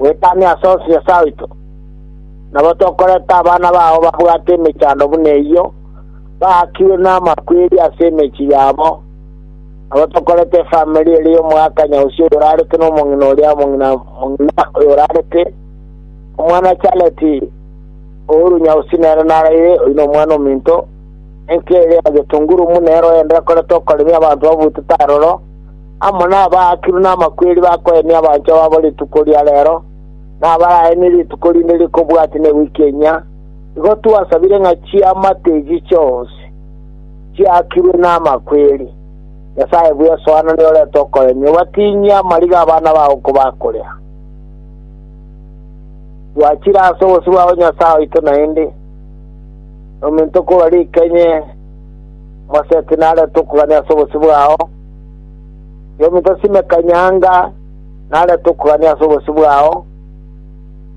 Gwetania ase Oseso oito. Nabo tokoreta abana bao babwate emechando buna eyio, baakirwe namakweri ase emechie yabo, nabo tokoreta efamiri ere y'omogakanya Usia oyorarete nomong'ina oria omong'ina mong'ina oyorarete, omwana Charleti orunya Usi nere naraire, oyio nomwana ominto, enka ere ya getunguru buna eroende ekorete okoremia abanto babutete aroro, amo nabaakiru namakweri bakoenia abanchwa babo rituko ria reero, na abaraenie rituko rinde rikobwati ne wiki enyia, igo twasabire ng'a chiamate echi chionsi chiakirwe namakweri. Nyasae bw'esoano niyorente okoenia, obatinyie amariga abana bao kobakorea. Twachire ase obosio bwao Nyasae oito naende, nominto korwa rikenye, Moseti narente okogania ase obosio bwao, Y'omintosi ime kanyanga narete okogania ase obosio bwao,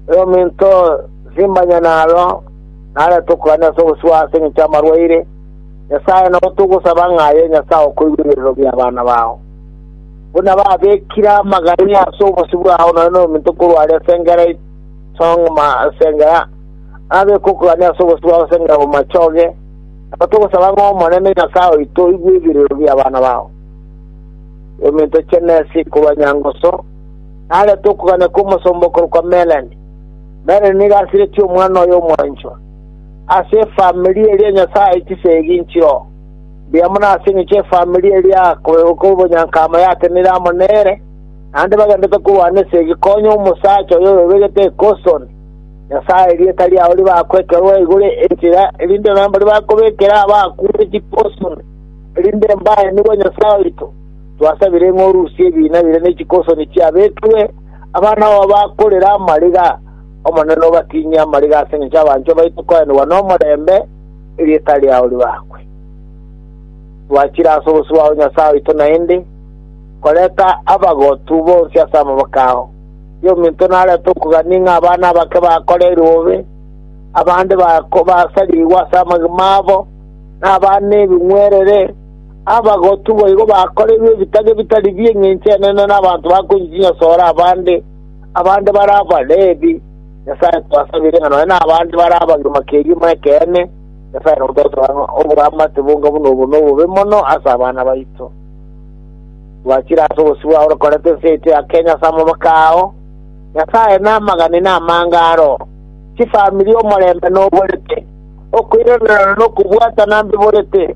y'omintosi mbanyanaro narete okogania ase obosio bwao ase engencho y'amarwaire, Nyasae, nabo togosaba ng'a aye Nyasae okoigwa ebiarero bi'abana bao. Buna babekire amagania ase obosio bwao nonye nominto korwa aria ase engera isong'uma ase engera, nabeke okogania ase obosio bwao ase engera bomachoge, Nabo togosaba ng'a Omonene Nyasae oito oigwe ebirero bi'abana bao, eminto chi'enesi korwa nyangoso, narete okogania kw'omosomba okorokwa Melani. Melani nigo asiretie omwana oye omwanchwa ase efamiri eria Nyasae chisegi nchio mbuya mono ase engencho efamiri eria y'obonyanka amo yatenire amo nere, naende bagenderete korwana esegi konya omosacha oyo oyebegete ekosoni. Nyasae erieta riao ribakwekerwa igoro enchera, erinde nonya mbaria bakobekera abakuure chikoso, erinde mbaye nigo Nyasae oito. Twasabire ng'a orusie ebiina bire ne chikosoni chiabekirwe, abana babo bakorere amariga. Omonene obatinyie amariga ase engencho y'abanchwa baito koenigwa nomorembe, erieta riao ribakwe. Twachire ase obosio bwao Nyasae oito naende, koreta abagotu bonsi ase amaboko ao. y'ominto narete okogania ng'a abana abake bakoreirwe bobe, abande basarigwe ase amagima abo, na abana ebing'werere, abagotu boigo bakoreirwe ebitage bitari bi engencho enene na abanto bakoinywa chinyasore abande, abande bare Abalebi. Nyasae twasabire ng'a nonya nabande bare abagima kegima ekeene, Nyasae nototoe ng'a oboramate bonga buna obo nobobe mono ase abana baito. Gwachire ase obosio bwao orokorete ense yaito ya Kenya ase amaboko ao, Nyasae namagane namange aro, chifamiri omorembe noborete, okoiranereria na okobwatana mbiborete.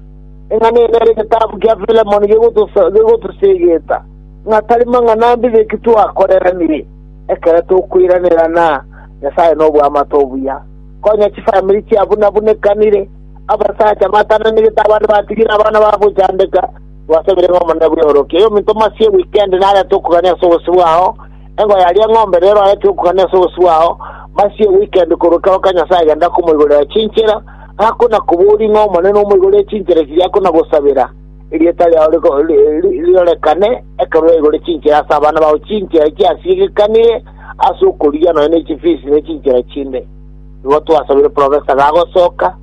Ing'ana eye nere egetabu kia Filemoni gegotoseegeta ng'a tari mang'ana mbibeke twakoreranire ekero tokoiranera na Nyasae noboamate obuya. Konya chifamiri chiabunabunekanire, abasacha batananegete abande batigire abana babo gochandeka, Gwasabire ng'a Omonene bw'eorokia yominto masia e wikendi narente okogania ase obosio bwao, engo yaria eng'ombe rero arente okogania ase obosio bwao masia e wikendi korwa ekero kia Nyasae agenda komoigorera chinchera, akona koboria ng'a Omonene omoigorie chinchera chiria akona gosabera, erieta riao rirorekane ekero yaigore chinchera ase abana bao chinchera chiasiegekanire ase okorigia nonya ne chifisi ne chinchera chinde. Igo twasabire Professor gagosoka,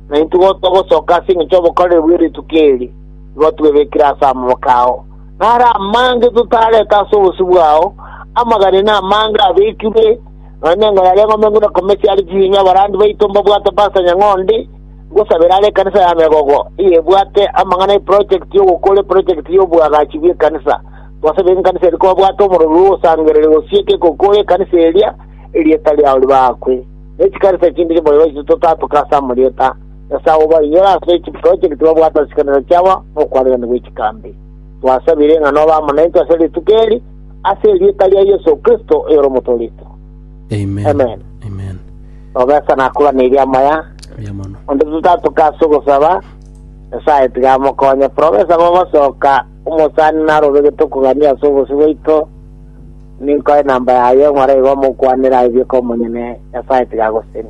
naintwe igo togosoka ase engencho y'obokoreri bwe rituko eri. igo twebekire ase amaboko ao. Naro amange totarete ase obosio bwao, amagare na amange abekirwe, nonya nengoro aria eng'ombe ngure komesia are chinyinyi abarandi baito mbabwate Pastor Nyang'ondi, ngosabera are ekanisa ya Megogo, eyebwate amang'ana y'eprojekti y'ogokora eprojekti y'oboagachi bw'ekanisa. Twasabire nkanisa eria kobabwate omorori bw'ogosangereria gosieka egokora ekanisa eria, erieta riao ribakwe. Ne chikanisa chinde chimboiboisu totatoka ase amarieta, Nyasae obainyore ase chiprojekti babwate chikanisa chiabo nokwanigani gwe chikambi. Twasabire ng'a nobe amo naintwe ase rituko eri, ase erieta ria Yeso Kristo oyore Omotoorito. Amen. Amen. Nobesa nakoraneirie amaya, Mbuya mono. onde totatoka ase ogosaba, Nyasae tiga amokonye. Profesa bogosoka omosani narobegete okogania ase obosio bwaito, ninkoe namba yaye, ng'ora igo mokwanera aye bieka omonyene, Nyasae tiga agoseni.